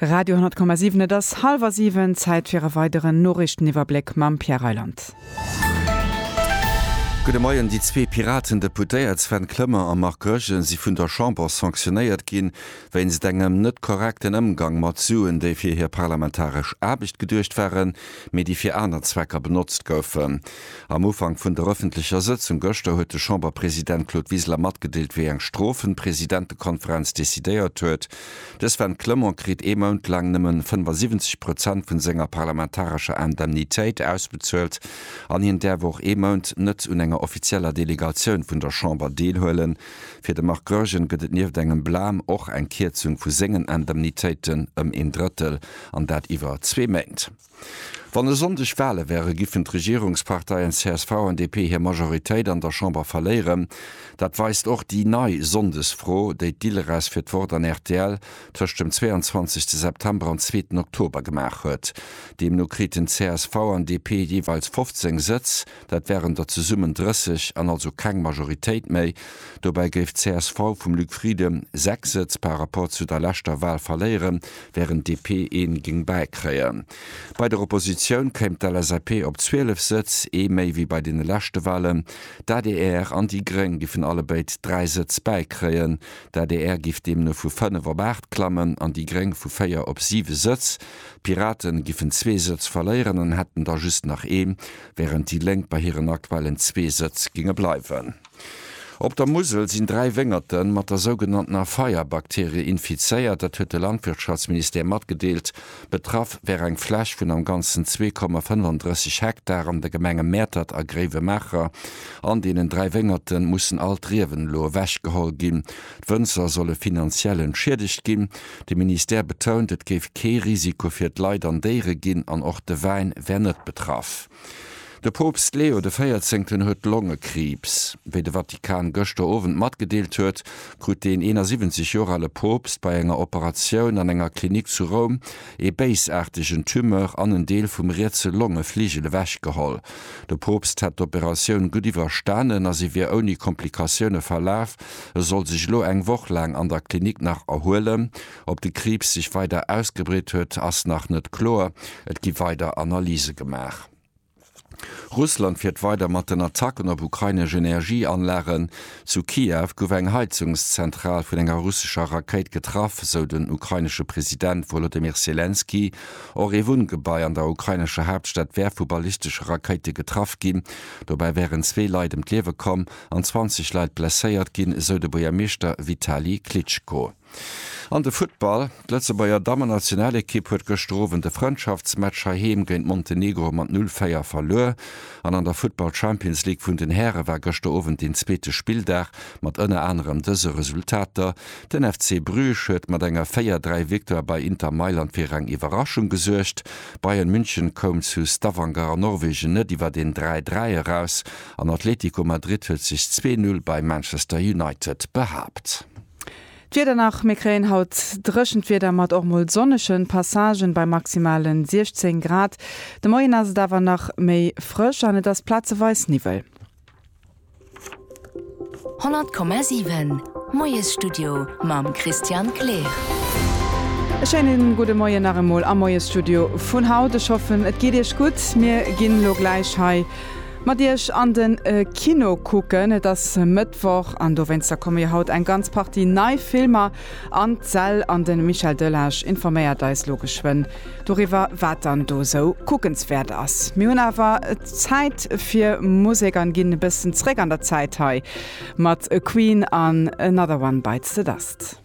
Radio 10,7 Et ass hallwer siwen, Zäit fir e weideren Noriichteniwwerbléck mam Pierre Reyland. Gudde Moien. Déi zwee Piraten-Deputéiert Sven Clement a Marc Goergen si vun der Chamber sanctionéiert ginn, wéinst engem net korrekten Ëmgang mat Suen, déi fir hir parlamentaresch Aarbecht geduecht waren, mee déi fir aner Zwecker benotzt goufen. Am Ufank vun der ëffentlecher Sëtzung gëschter huet de Chamberpresident Claude Wiseler matgedeelt, wéi eng Strofen d'Presidentekonferenz decidéiert huet. De Sven Clement kritt ee Mount laang nëmmen 75 Prozent vun senger parlamentarescher Indemnitéit ausbezuelt an hien däerf och ee Mount net un enger offizieller Delegatioun vun der Chamber deelhuelen. Fir de Marc Goergen gëtt et nieft engem Blam och eng Kierzung vu sengen Indemnitéiten ëm een Drëttel an dat iwwer zwee Méint. Wann e Sonndeg Wale wäre giffen d'Regierungsparteien csv an DP hir Majoritéit an der Chamber verléieren. Dat weist och déi nei Sonndesfro, déi d'ILRES fir d'Wort an rtl tëscht dem 22 September an zweeten Oktober gemaach huet. Deemno kriten csv an DP jeeweils 15 Sëtz. Dat wären der zesummen 30 an also keng Majoritéit méi. Dobäi géif csv vum Luc Frieden 6 Sëtz par Rapport zu der leschter Wal verléieren, wärend DP een géing bäikréien. Bei der Oppositioun kéim d'LSAP op 12 Sëtz, ee méi wéi bei deene leschte Walen. D'adr an déi Gréng giffen allebéid 3 Sëtz bäikréien. D'adr giff deemno vu 5 op 8 klammen an déi Gréng vu 4 op 7 Sëtz. D'Piraten giffen zwee Sëtz verléieren an hätten da just nach ee Wärend déi Lénk bei hiren aktuellen zwee Sëtz géinge bleiwen. Op der Musel sinn dräi Wéngerte mat der sougenanntener Feier-Bakterie infizéiert, dat huet de Landwirtschaftsministère matgedeelt. Betraff wär eng Fläch vun am Ganzen zwee Komma 35 Hektar an de Gemenge Mäertert a Gréiwemaacher. An deenen dräi Wéngerte mussen all d'Riewen elo ewechgeholl ginn, D'Wënzer solle finanziell entschiedegt ginn. De Ministère betount, et géif kee Risiko fir d'Leit an Déiere ginn an och de Wäin wär net betraff. De Poopst Leo de Véierzéngten huet Longekriibs. Wéi de Vatikan gëschter Owend matgedeelt huet, krut deen 71 Joer ale Poopst bei enger Operatioun an enger Klinik zu Roum ee béisaartegen Tumeur an en Deel vum rietse Longefligel ewech geholl. De Poopst hätt d'Operatioun gutt iwwerstanen a se wier ouni Komplikatioune verlaf. E soll sech elo eng Woch laang an der Klinik nach erhuelen. Ob de Kriibs sech weider ausgebreet huet, ass nach net kloer. Et gi weider Analyse gemaach. Russland fiert weider mat den Attacken op ukrainesch Energieanlagen. Zu Kiew gouf eng Heizungszentral vun enger russescher Rakéit getraff, esou den ukrainesche President Wolodymyr Selenskyj. Och ee Wunngebai an der ukrainescher Haaptstad wär vu ballistesche Rakéite getraff ginn. Dobäi wären zwee Leit ëm d'Liewe komm. an 20 Leit blesséiert ginn, esou de Buergermeeschter Vitali Klitschko. An de Futtball, D'Lëtzebuerger Dammen-Nationalekipp huet gëschter Owend de Frëndschaftsmatch heiheem géint Montenegro mat 0, 4 verluer an an der Futtball Champions League vun den Häre war gëschter Owend deen zweete Spilldag mat ënner anerem dëse Resultater, Den FC Bruges huet mat enger 4, 3 Victoire bei Inter Mailand fir eng Iwwerraschung gesuergt, Bayern München koum zu Stavanger an Norwegen net iwwer een 3, 3 eraus. an Atlético Madrid huet sech zwee Null bei Manchester United behaapt. D'Wieder nach, Mir kréien haut dréchent Wieder mat och mol sonnege Passagen bei maximale 16 Grad. De Moien ass et awer nach méi frësch an et ass plazeweis Niwwel. 100,7 Moiesstudio mam Christian Kleer. E schéine gudde Moien nach emol am Moiesstudio vun haut. Ech hoffen et geet Iech gutt. Mir ginn elo gläich hei. Mat iech an den Kino kucken. Et ass Mëttwoch an dowéinster komme jo haut eng ganz Partie nei Filmer an d'Säll an de Michel Delage informéiert eis lo geschwënn doriwwer wat dann do sou kuckenswäert ass. Mir hunn awer Zäit fir Musek an ginn e bëssen zréck an der Zäit hei mat Queen an Another One Bites The Dust.